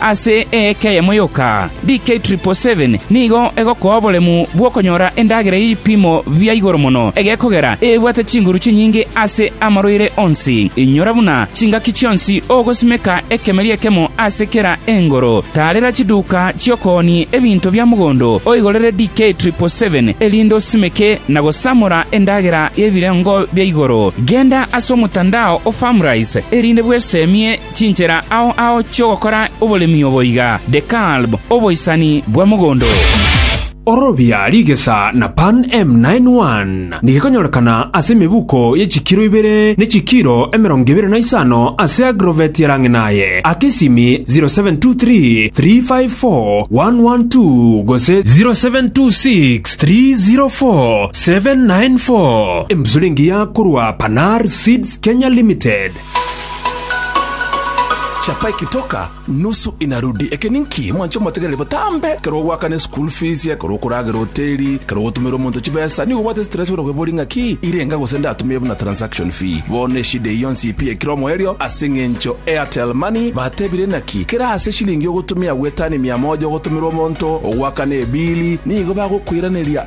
Ase eeka eyemo yoka, DK777 nigo egokoa oboremu bw'okonyora endagera y'ebipimo bia igoro mono egekogera ebwate chinguru chinyinge ase amarwaire onsi. Inyora buna chingaki chionsi ogosimeka ekemeri ekemo ase kera engoro. Taarera chiduka chi'okoonia ebinto bia mogondo oigorere DK777 erinde osimeke na gosamora endagera y'ebirengo bia igoro. Genda ase omotandao o Farmrise erinde bwesemie Chinchera ao ao chi'ogokora oboremi obo iga, Dekalb, oboisani bwa mogondo. Orobia rigesa na Pan M91 nigekonyorekana ase emebuko ye chikiro ibere ne chikiro emerongo ebere na isano ase agrovet ya Rang'inaye, aka esimi 0723 354 112 gose 0726 304 794. Embusuro engiya korwa Panar Seeds Kenya Limited. Chapa ekitoka nusu inarudi. Eke ninki mwancha omotegereri botambe? Ekero ogoakana eschool fees, ekero okoragera hoteli, ekero ogotumera omonto chibesa, nigo obwate stress ore kwebori ngaki irenga gose ndatumie buna transaction fee. Bono eshida eye yonsi ipiekire omoerio ase engencho Airtel Money batebire naki kera ase eshilingi ogotumia gwetani mia moja ogotumera omonto ogoakana ebili nigo bagokoiraneria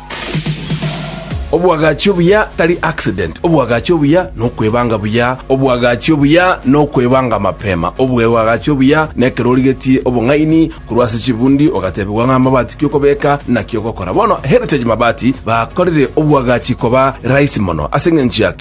Obwagachi obuya tari accident, obwagachi obuya nokwebanga buya, obwagachi obuya nokwebanga mapema, obwebwagachi obuya nekero origetie obong'aini korwa ase chibundi ogatebigwa ng'a amabati kiokobeka naki ogokora. Bono Heritage Mabati bakorire obwagachi koba rahisi mono ase eng'encho ya